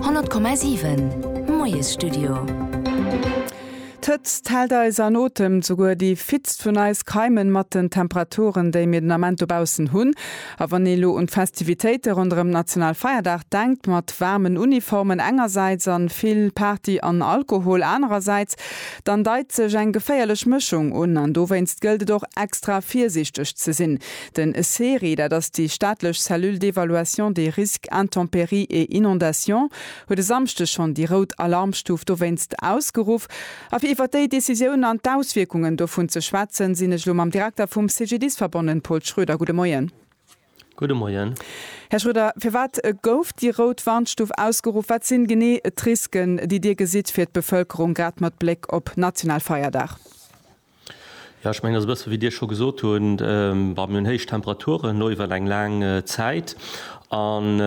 100,7 Moiesstudio D'Hëtzt hält eis an Otem, souguer déi fittst vun eis keimen mat den Temperaturen déi mir den Ament dobaussen hunn. A wann ee lo un d'Festivitéite ronderëm Nationalfeierdag denkt, mat waarmen Uniformen engersäits an vill Party an Alkohol anerersäits, dann deit sech eng geféierlech Mëschung un an dowéinst gëllt et och extra virsiichteg ze sinn. Den Ceri, dat ass déi staatlech Cellule d'évaluation des risques intempéries et inondations, huet e Samschdeg schonn déi rout Alarmstuf dowéinst ausgeruff. A fir iwwer déi Decisioun an d'Auswierkungen dovun ze schwätzen, sinn ech elo mam Direkter vum CGDIS verbonnen, Paul Schroeder. Gudde Moien. Gudde Moien. Här Schroeder, firwat gouf déi rout Warnstuf ausgeruff? Wat sinn genee d'Risken, déi Dir gesitt fir d'Bevëlkerung, grad mat Bléck op national Feierdag? Jo, ech mengen, et ass e bësse wéi Dir scho gesot hutt, bon, mir hunn héich Temperaturen elo iwwer eng laang Zäit an,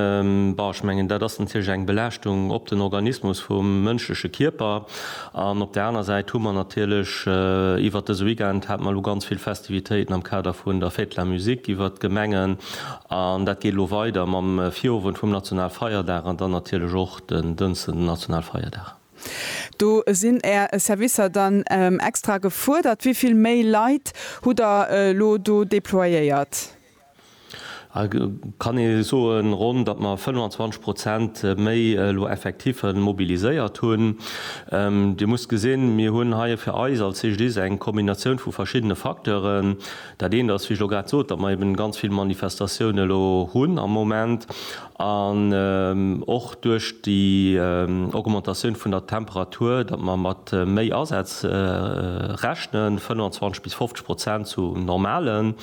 bon, ech mengen, dat ass natierlech eng Belaaschtung op den Organismus vum mënschleche Kierper. An op där aner Säit hu mer natierlech iwwer dëse Weekend, hate mer elo ganz vill Festivitéiten am Kader vun der Fête de la musique iwwert d'Gemengen an dat geet elo weider mam Virowend vum Nationalfeierdag an dann natierlech och den Dënsten den Nationalfeierdag. Do sinn Är Servicer dann extra gefuerdert. Wéi vill méi Leit hutt Der elo do déployéiert? Et kann ee soen, ronn, datt mer 25 Prozent méi elo Effektiffe mobiliséiert hunn. Dir musst gesinn, mir hunn hei fir eis als CGDIS eng Kombinatioun vu verschiddene Facteuren. Dat eent ass, wéi ech elo grad sot, datt mer eben ganz vill Manifestatioune lo hunn am Moment. An och duerch déi Augmentatioun vun der Temperatur, datt mer mat méi Asätz rechnen, 25 bis 50 Prozent zu normalen,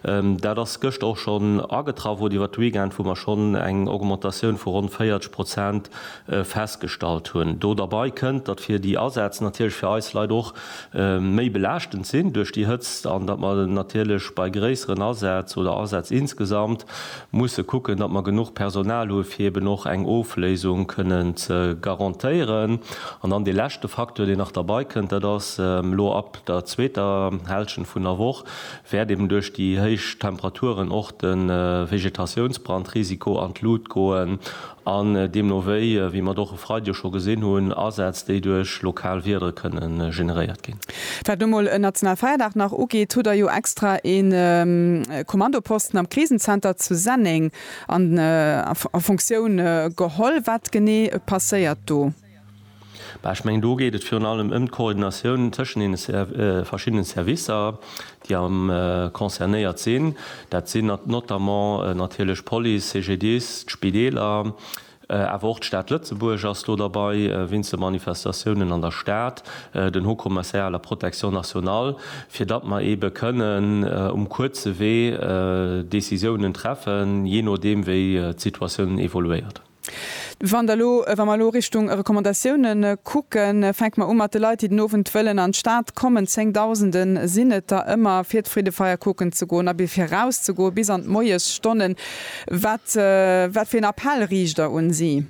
dat ass gëschter och schonn agetraff oder iwwert de Weekend, wou mer schonn eng Augmentatioun vu ronn 40 Prozent festgestallt hunn. Do derbei kënnt, datt fir déi Asätz natierlech fir eis Leit och méi belaaschtend sinn duerch déi Hëtzt an datt mer natierlech bei gréisseren Asätz oder Asätz insgesamt musse kucken, datt mer genuch Personal hu fir eben och eng Ofléisung kënnen ze garantéieren. An dann dee leschte Facteur, deen nach derbei kënnt, dat ass elo ab der zweeter Hälschent vun der Woch wäert eben duerch déi héich Temperaturen och de Vegetatiounsbrandrisiko an d'Lut goen An deemno wéi, wéi mer et och e Freideg scho gesinn hunn, Asätz, déi duerch lokal Wieder kënne generéiert ginn. Wat lo mol en Nationalfeierdag nach ugeet, hutt Der jo extra e Kommandoposten am Krisenzenter zu Senneng a Funktioun geholl. Wat genee passéiert do? Ech mengen, do geet et virun allem ëm d'Koordinatioun tëschent deene verschiddene Servicer, déi concernéiert sinn. Dat sinn notamment natierlech d'Police, CGDIS, d'Spideeler, awer och d'Stad Lëtzebuerg ass do derbäi wéinst de Manifestatiounen an der Stad, den Haut Commissariat à la protection nationale, fir datt mer eebe kënnen um kuerze Wee Decisiounen treffen, jee nodeem wéi d'Situatioun evoluéiert. Wann Der elo, wa mer elo Richtung Recommandatiounen kucken, fänke mer u mat de Leit, déi den Owend wëllen an d'Stad kommen, Zéngdausende sinn et der ëmmer, fir d'Freedefeier kucken ze goen a bis fir erauszegoen, bis an d'Moiesstonnen. Wat, wat fir en Appell riicht Der un si?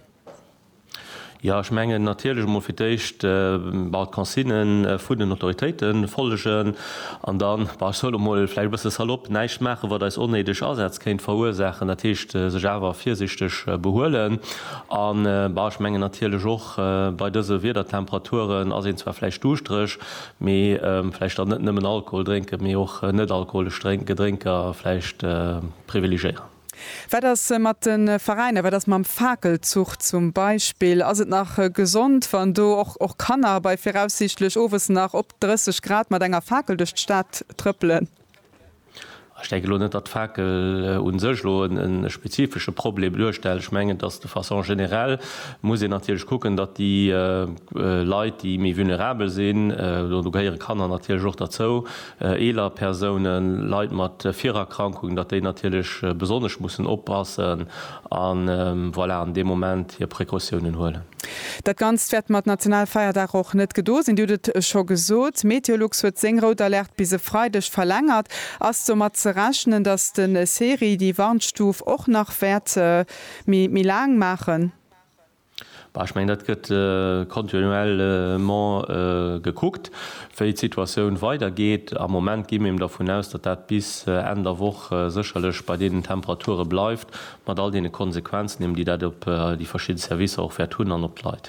Jo, ech mengen natierlech emol fir d'Éischt, bon, d'Consignen vun den Autoritéite follegen. An dann, bah, ech soen elo mol, vläicht e bësse salopp, näischt maachen, wat eis onnéideg Asätz kéint verursaachen. Dat heescht, sech awer virsichteg behuelen. A bah, ech mengen natierlech och, bei dëse Wiedertemperaturen ass een zwar vläicht duuschtereg, mee vläicht dann net nëmmen Alkohol drénken, mee och net-alkoholesch Gedrénker vläicht privilegéieren. Wat ass mat de Veräiner, wat ass mam Fakelzuch zum Beispill? Ass et nach gesond, wann do och och Kanner bei viraussiichtlech owes nach op 30 Grad mat enger Fakel duerch d'Stad trëppelen? Ech denke elo net, datt d'Fakel u sech elo e spezifesche Problem duerstellt. Ech mengen, datt de façon générale muss een natierlech kucken, datt déi Leit, déi méi vulnerabel sinn, do gehéiere Kanner natierlech och derzou, eeler Persounen, Leit mat Virerkrankungen, datt déi natierlech besonnesch mussen oppassen a voilà, an deem Moment hir Precautiounen huelen. Dat Ganzt wäert mat Nationalfeierdag och net gedo sinn. Dir hutt et scho gesot, Meteolux huet seng rout Alerte bis e Freideg verlängert. Ass domat ze rechnen, datt de SERI déi Warnstuf och nach wäert méi laang maachen? Bah, ech mengen, dat gëtt continuellement gekuckt, wéi d'Situatioun weidergeet. Am Moment gi mir dervun aus, datt dat bis Enn der Woch sécherlech bei deenen Temperature bleift, mat all deene Konsequenzen eben, déi dat op déi verschidde Servicer och wäert hunn an op d'Leit.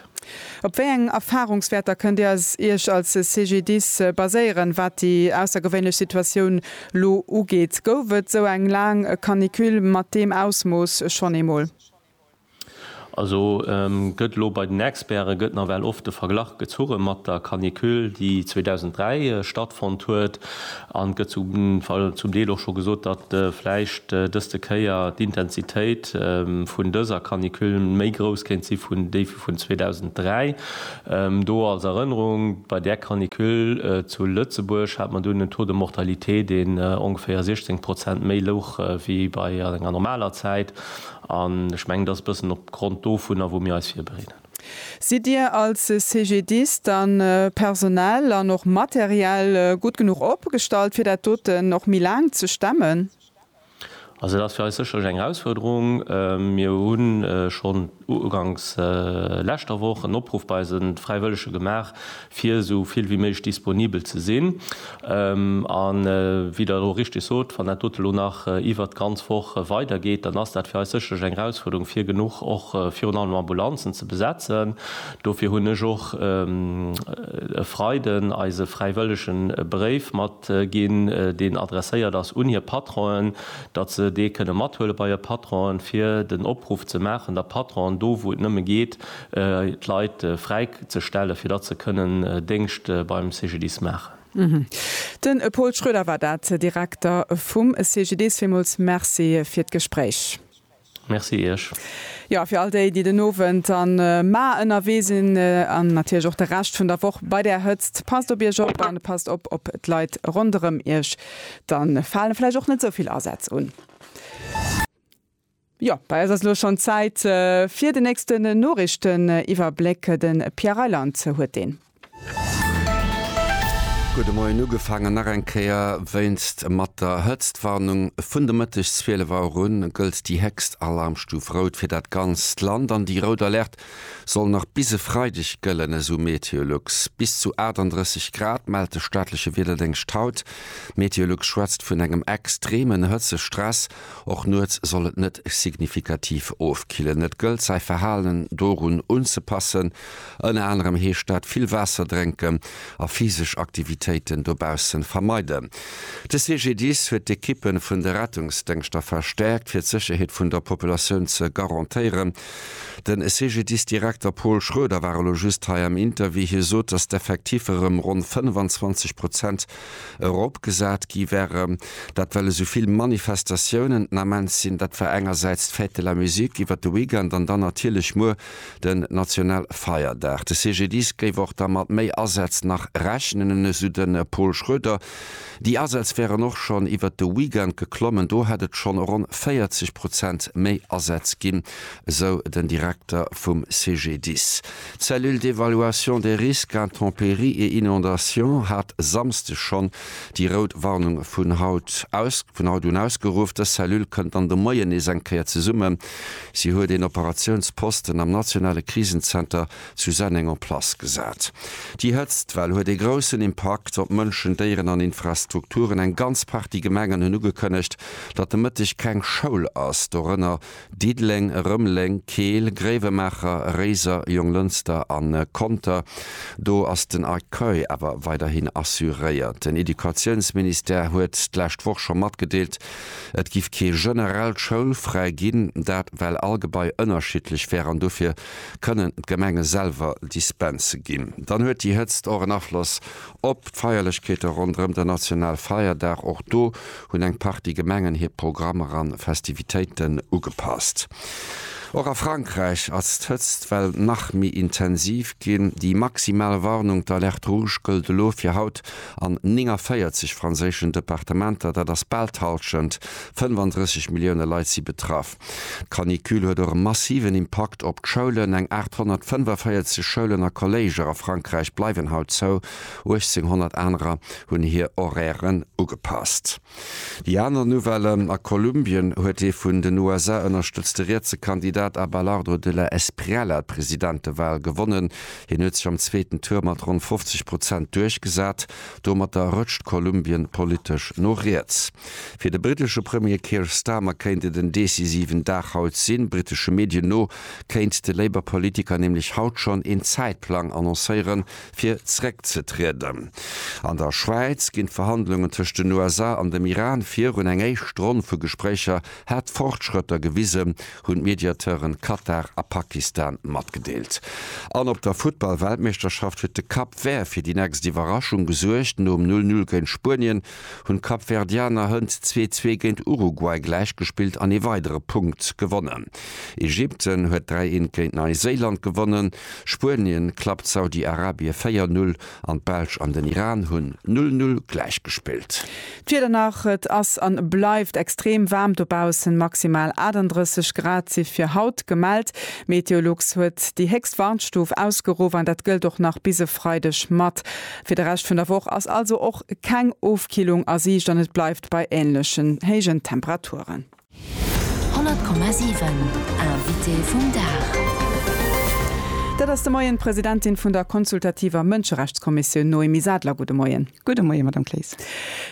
Op wéi eng Erfahrungswäerter kënnt Dir Iech als CGDIS baséieren, wat déi aussergewéinlech Situatioun elo ugeet? Gouf et esou eng laang Canicule mat deem Ausmooss schonn eemol? Also gëtt elo bei den Experte gëtt nawell oft de Verglach gezurre mat der Canicule, déi 2003 stattfonnt huet. An et gëtt zum Deel och scho gesot, datt vläicht dëst de Kéier d'Intensitéit vun dëser Canicule méi grouss kéint si vun déi vun 2003. Do als Erënnerung, Bei där Canicule zu Lëtzebuerg hat mer dunn en Taux de mortalité, deen ongeféier 16 Prozent méi louch wéi bei enger normaler Zäit. An ech mengen, et ass e bëssen op Grond dovunner, wou mir eis virbereeden. Sidd Dir als CGDIS dann personell an och materiell gutt genuch opgestallt, fir dat doten och méi laang ze stemmen? Also dat ass fir eis sécherlech eng Erausfuerderung. Mir hu schonn uganks leschter Woch en Opruff bei eise Fräiwëllege gemaach, fir esou vill wéi méiglech disponibel ze sinn an, wéi Der elo richteg sot, wann dat dote elo nach iwwert d'ganz Woch weidergeet, dann ass dat fir eis sécherlech eng Erausfuerderung, fir genuch och virun allem Ambulanzen ze besetzen. Dofir hunn ech och e Freiden eise Fräiwëllegen e Bréif matginn, deen adresséiert ass un hir Patronen, datt se dee kënne mathuele bei hir Patronen, fir den Opruff ze maachen, datt d'Patronen do, wou et nëmme geet, d'Leit fräi ze stellen, fir datt se kënnen Déngscht beim CGDIS maachen. Den Paul Schroeder war dat, Direkter vum CGDIS. Villmools Merci fir d'Gespréich. Merci Iech. Jo, fir all déi, déi den Owend a Mar ënnerwee sinn, an natierlech och de Rescht vun der Woch bei där Hëtzt, passt op Iech op a passt op op d'Leit ronderëm Iech. Da fale vläicht och net esou vill Asätz un. Jo, bei eis ass elo schonn Zäit fir den nächsten Noriichteniwwerbléck. De Pierre Reyland huet deen. Gutt de Moien ugefaangen nach eng Kéier wéinst mat der Hëtztwarnung. Vun de Mëtteg 12 Auer u gëllt déi héchst Alarmstuf Rout fir dat ganzt Land an déi Rout Alerte soll nach bis e Freideg gëllen, esou Meteolux. Bis zu 38 Grad mellt de staatleche Wiederdéngscht haut. Meteolux schwätzt vun engem extreemen Hëtzestress. Och nuets soll et net signifikativ ofkillen. Et gëllt säi Verhalen dorun unzepassen. Ënner anerem heescht dat vill Waasser drénken a physesch Aktivitéiten dobaussen vermeiden. De CGDIS huet d'Ekippe vun de Rettungsdéngschter verstäerkt, fir d'Sécherheet vun der Populatioun ze garantéieren. De CGDIS-Direkter Paul Schroeder war elo just hei am Interview. Hie sot, datt d'Effektiffer ëm ronn 25 Prozent eropgesat gi wäre. Dat well esou vill Manifestatiounen den Ament sinn. Dat war engersäits d'Fête de la musique iwwert de Weekend an dann natierlech muer den Nationalfeierdag. De CGDIS géif och da mat méi Asätz nach rechnen, esou de Pol Schroeder. Déi Asätz wären och schonn iwwert de Weekend geklommen. Do hätt et schonn ronn 40 Prozent méi Asätz ginn, esou den Direkter vum CGDIS. D'Cellule d'évaluation des risques intempéries et inondations hat e Samsde schonn déi rout Warnung vun haut aus, vun haut un ausgeruff. Dës Cellule kënnt dann de Moien nees eng Kéier zesumme. Si huet een Operatiounsposten am nationale Krisenzenter zu Senneng en place gesat. Déi Hëtztwell huet ee groussen Impakt op Mënschen, Déieren an Infrastrukturen. Eng ganz Partie Gemengen hunn ugekënnegt, datt de Mëtteg keng Schoul ass, dorënner Diddeleng, Rëmeleng, Keel, Gréiwemaacher, Réiser, Jonglënster a Conter, do ass den Accueil awer weiderhin assuréiert. Den Educatiounsministère huet d'lescht Woch scho matgedeelt, et giff kee generellt Schoulfräi ginn, dat well all Gebai ënnerschiddlech wär an dofir kënnen d'Gemenge selwer Dispense ginn. Dann huet déi Hëtzt och en Afloss Op d'Feierlechkeete ronderëm den Nationalfeierdag, och do hunn eng Partie Gemengen hir Programmer an Festivitéiten ugepasst. Och a Frankräich ass d'Hëtzt well nach méi intensiv ginn. Déi maximal Warnung, d'Alerte rouge, gëllt elo fir haut an 49 franséischen Departementer. Dat ass bal d'Hallschent, 35 Millioune Leit si betraff. D'Canicule huet och e massiven Impakt op d'Schoulen, eng 845 Schoulen a Kolléiger a Frankräich bleiwen haut zou, 1800 anerer hunn hir Horairen ugepasst. Déi aner Nouvelle, A Kolumbien huet dee vun den USA ënnerstëtzte rietse Kandidat Abelardo de la Espriella d'Presidentewal gewonnen. Hien huet sech am zweeten Tour mat ronn 50 Prozent duerchgesat. Domatter rëtscht Kolumbien politesch no riets. Fir de brittesche Premier Keir Starmer kéint et en decisiven Dag haut sinn. Brittesche Medien no kéint de Labour-Politiker nämlech haut schonn een Zäitplang annoncéieren, fir zeréckzetrieden. An der Schwäiz ginn d'Verhandlungen tëscht den USA an dem Iran virun. Eng éischt Ronn vu Gespréicher hätt Fortschrëtter gewisen, hunn d'Mediateuren Katar a Pakistan matgedeelt. An op der Futtball-Weltmeeschterschaft huet de Cap Vert fir déi nächst Iwwerraschung gesuergt. Nom Null-Null géint Spuenien hunn d'Kapverdianer hënt zwee zwee géint Uruguay gläichgespillt an ee weidere Punkt gewonnen. Ägypten huet dräi eent géint Neiséiland gewonnen, Spuenien klappt Saudi-Arabie véier Null an d'Belsch an den Iran hunn Null Null gläichgespillt. D'Wieder nach, Et ass an bleift extrem waarm dobaussen, maximal 38 Grad si fir haut gemellt. Meteolux huet déi héchst Warnstuf ausgeruff an dat gëllt och nach bis e Freideg mat. Fir de Rescht vun der Woch ass also och keng Ofkillung a Siicht an et bleift bei änlechen héijen Temperaturen. 100,7 Invité vum Dag. Dat ass de Moien d'Presidentin vun der consultativer Mënscherechtskommissioun Noémie Sadler. Gudde Moien. Gudde Moie, Madame Claes.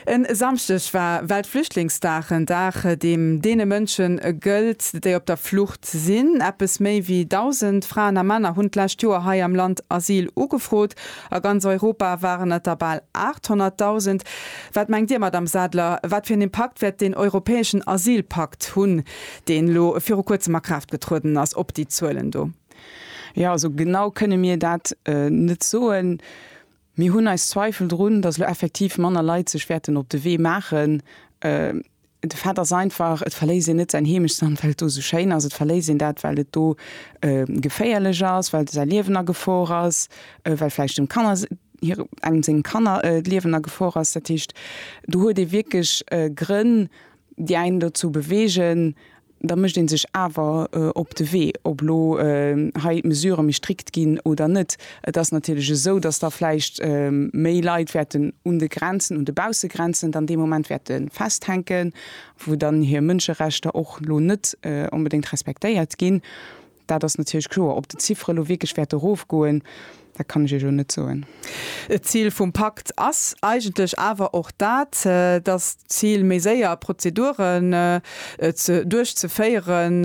E Samschdeg war Weltflüchtlingsdag, en Dag, deem deene Mënsche gëllt, déi op der Flucht sinn. Eppes méi wéi 1.000 Fraen a Männer hunn d'lescht Joer hei am Land Asyl ugefrot A ganz Europa waren et der bal 800.000. Wat mengt Dir, Madamm Sadler, wat fir en Impakt wäert deen europäeschen Asylpakt hunn, deen elo viru Kuerzem a Kraaft getrueden ass, op déi Zuelen do? Jo, also genau kënne mir dat net soen. Mir hunn eis Zweifel drun, datt elo effektiv manner Leit sech wäerten op de Wee maachen. De Fait ass einfach, et verléisst een net säin Heemechtsland, well et do esou schéin ass. Et verléisst een dat, well et do geféierlech ass, well säi Liewen a Gefor ass, well vläicht dem Kanner, hire, engem sengem Kanner d'Liewen a Gefor ass. Dat heescht, do huet ee wierklech Grënn, déi einen dozou beweegen, da mécht ee sech awer op de Wee, ob elo hei d'Mesurë méi strikt ginn oder net. Et ass natierlech esou, dass da vläicht méi Leit wäerten un de Grenzen, un de Baussegrenzen dann dee Moment wäerte festhänken, wou dann hir Mënscherechter och elo net onbedéngt respektéiert ginn. Dat ass natierlech kloer. Ob déi Ziffere lo wierklech wäerte erofgoen, dat kann ech Iech elo net soen. D'Zil vum Pakt ass eigentlech awer och dat, dass d'Zil, méi séier Prozeduren duerchzeféieren,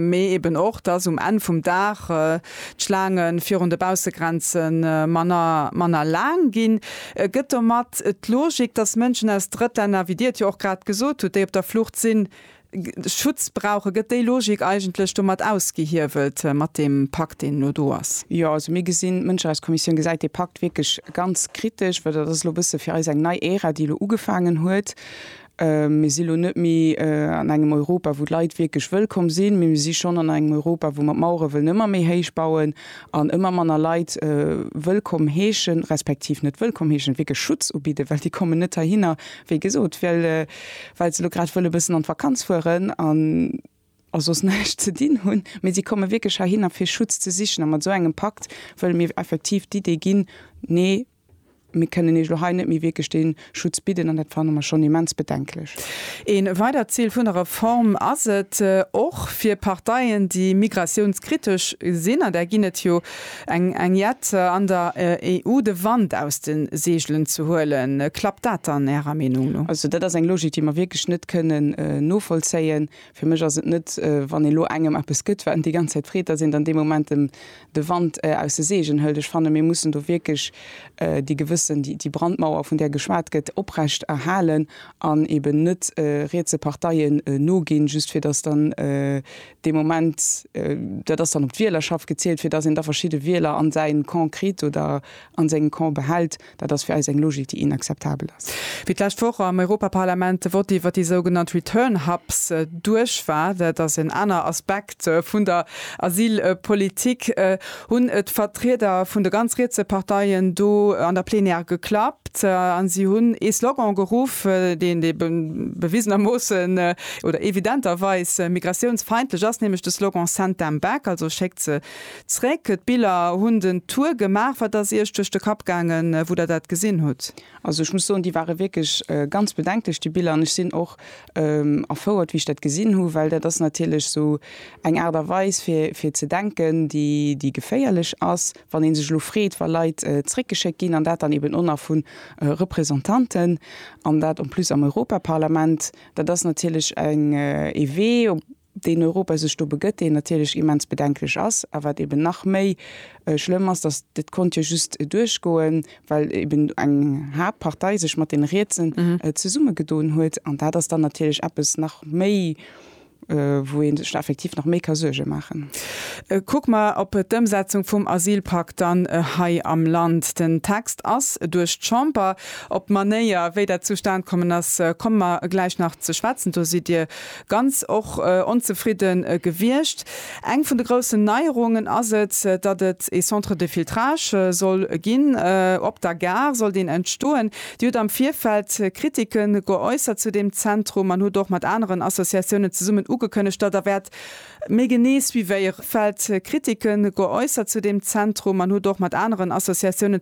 mee eben och, dass um Enn vum Dag d'Schlaange virun de Baussegrenze manner laang ginn, gëtt domat d'Logik, dass Mënschen aus Drëttlänner, wéi Dir et jo och grad gesot hutt, déi op der Flucht sinn, Schutz brauchen. Gëtt déi Logik eigentlech domat ausgehiewelt, mat deem Pakt, deen elo do ass? Jo, also mir gesinn, d'Mënscherechtskommissioun gesäit dee Pakt wierklech ganz kritesch, well dat ass elo e bësse fir eis eng nei Ära, déi elo ugefaangen huet. Mir si elo net méi an engem Europa, wou d'Leit wierklech wëllkomm sinn, mee mir si schonn an engem Europa, wou mer d'Mauere wëllen ëmmer méi héich bauen an ëmmer manner Leit wëllkomm heeschen, respektiv net wëllkomm heeschen, wierklech Schutz ubidden, well déi kommen net heihinner, Wéi gesot, well well se elo grad wëlle bëssen an d'Vakanz fueren an a soss näischt ze dinn hunn. Mee si komme wierklech heihinner, fir Schutz ze sichen. A mat esou engem Pakt wëlle mir effektiv d'Idee ginn, Nee, mir kënnen iech elo hei net méi wierklech dee Schutz bidden. An dat fanne mer schonn immens bedenklech. Ee weidert Zil vun der Reform ass et, och fir Parteien, déi migratiounskritesch sinn, an där ginn et jo, Eng Enquête an der EU de Wand aus de Seegelen ze huelen, klappt dat dann Ärer Meenung no? Also dat ass eng Logik, déi mer wierklech net kënnen novollzéien. Fir mech ass et net, wann ee lo engem eppes gëtt, wat en déi ganz Zäit freet, datt een dann dee Moment em de Wand aus de Seegen hëlt. Ech fanne mir mussen do wierklech déi gewëssen, déi Brandmauer, vun där geschwat gëtt, oprecht erhalen an eeben net rietse Parteien noginn, just fir datt dann dee Moment, dat ass dann op d'Wielerschaft gezielt, fir datt een da verschidde Wieler an säi Camp kritt oder an sengem Camp behält, dat ass fir eis eng Logik, déi inakzeptabel ass. Wéi d'lescht Woch am Europaparlament de Vott iwwert déi sougenannt Return Hubs duerch war, dat ass en aner Aspekt vun der Asylpolitik, hunn et Vertrieder vun de ganz rietse Parteien do an der Plenière geklappt a si hunn ee Slogan geruff, deen dee bewisenermoossen oder evidenterweis migratiounsfeindlech ass, nämlech de Slogan Send them back, also schéckt se zréck. D'Biller hunn den Tour gemaach. Wat ass Iech duerch de Kapp gaangen, wou Der dat gesinn hutt? Also ech muss soen, déi ware wierklech ganz bedenklech, déi Biller. An ech sinn och Erfouert wéi ech dat gesinn hu, well dat ass natierlech esou eng Aart a Weis fir fir ze denken, déi déi geféierlech ass. Wann ee sech elo freet, wa Leit zréckgeschéckt ginn, an dat dann eben och nach vu Représentanten, an dat en plus am Europaparlament, dat ass natierlech eng ee Wee, deen Europa sech do begëtt, deen natierlech immens bedenklech ass, a wat eben nach méi schlëmm ass, dass, dat konnt jo just duerchgoen, well eben eng Haaptpartei sech mat deene Rietse zesummegedoen huet, an dat ass dann natierlech eppes nach méi, wou ee sech effektiv nach méi ka Suerge maachen. Kucke mer op d'Ëmsetzung vum Asylpak dann hei am Land. Den Text ass duerch d'Chamber. Op d'Manéier, wéi dat zustane kommen ass, komme mer gläich nach ze schwätzen. Do sidd Dir ganz och onzefridde gewiescht. Eng vun de groussen Neierungen ass et, datt et ee Centre de filtrage soll ginn. Op der Gare sollt een entstoen. Dir hutt am Virfeld Kritike geäussert zu deem Zentrum an hutt och mat aneren Associatiounen zesummen ugekënnegt, datt Der wäert méi genee suivéieren. Kritike geäussert zu deem Zentrum an hutt och mat aneren Associatiounen